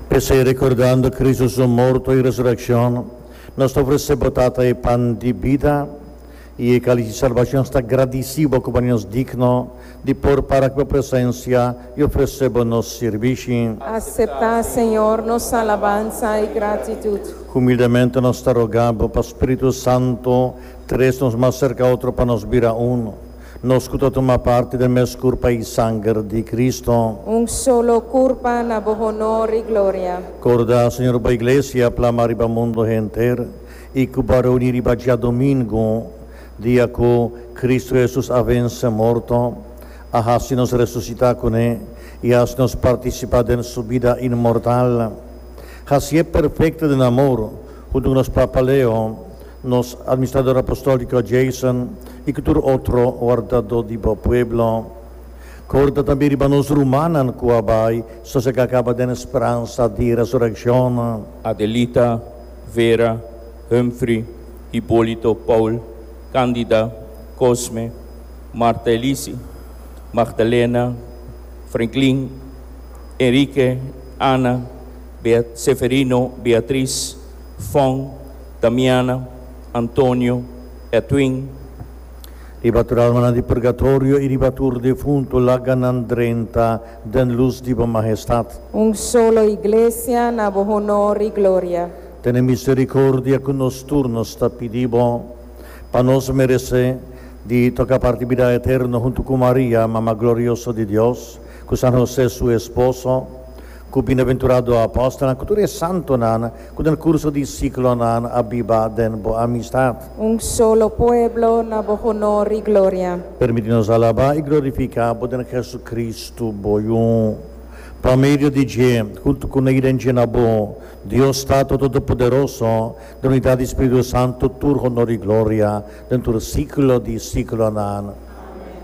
P'esei, rekordando Kristu su morto i resurekshon, nos ta ofresé bo Tata e pan di bida i e kalis di salbashon. Sta gradisí bo ku bo haña nos digno di por para aki bo presensia i ofresé bo nos sirbishi. Aseptá, Señor, nos alabansa i gratitut. Humildemente nos ta rogá bo pa spiritu santu tres nos mas serka otro pa nos bira unu. Nos cu ta tuma parti den mes curpa y sanger di Cristo. Un solo curpa na bo honor y gloria. Corda, Señor, bo Iglesia plama riba mundo henter y cu bo a reuni riba djadomingo, dia cu Cristo Jesus a vence morto, a haci nos resucita cu ne y a haci nos participa den su bida inmortal. Haci'e perfecto den amor, hunto cu nos papa Leo. Nos Administrador Apostoliki Jason i ku tur otro wardadó di bo pueblo. Korda tambe riba nos rumannan ku a bai sosegá kaba den e speransa di resurekshon. Adelita, Vera, Humphrey, Hipolito, Paul, Candida, Cosme, Marta Elisi, Magdalena, Franklin, Enrique, Ana, Bea, Seferino, Beatriz, Fong, Damiana, Antonio, Edwin. Riba tur almanan di purgatorio i riba tur defuntu laga nan drenta den lus di bo Mahestat. Un solo Iglesia na bo honor i gloria. Tene misericordia cu nos tur, nos ta pidi bo, pa nos merece di toca parti bida eterno huntu cu Maria, Mama glorioso di Dios, cu San Jose su esposo, Ku bienaventurado apòstelnan ku tur e santonan ku den kurso di siklonan a biba den bo amistat. Un solo pueblo na bo honor i gloria. Permití nos alabá i glorifiká bo den Hesukristu, bo Yun, pa medio di dje, huntu ku Nai den dje na bo, Dios Tata Todopoderoso, den unidat di Spiritu Santu, tur honor i gloria den tur siklo di siklonan. Amen.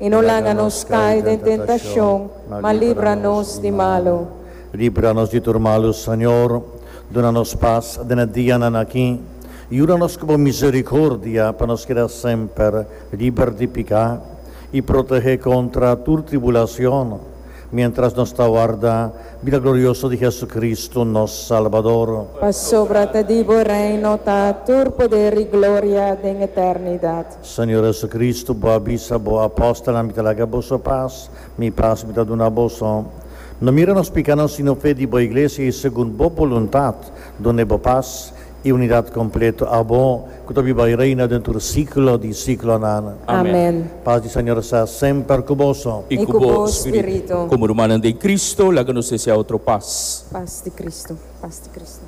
i no laga nos kai den tentashon, ma libra nos di malu. Libra nos di tur malu, Señor. Duna nos pas den e dianan aki. Yuda nos ku bo miserikordia pa nos keda semper liber di piká i protehé kontra tur tribulashon, miéntras nos ta warda bida glorioso di Hesukristu, nos Salbador. Pasobra ta di bo reino ta tur poder i gloria den eternidat. Señor Jesucristo, Bo a bisa Bo apóstolnan, Mi ta laga boso pas, Mi pas Mi ta duna boso. No mira nos picanan, sino fe di Bo Iglesia, i segun Bo boluntad, dun'e Bo pas i unidad completo. A Bo, cu ta biba i reina den tur siclo di siclonan. Amen. Pas di Señor sa semper cu boso. I cu bo spirito. Como rumannan den Cristo, laga nos desea otro pas. Pas di Cristo. Pas di Cristo.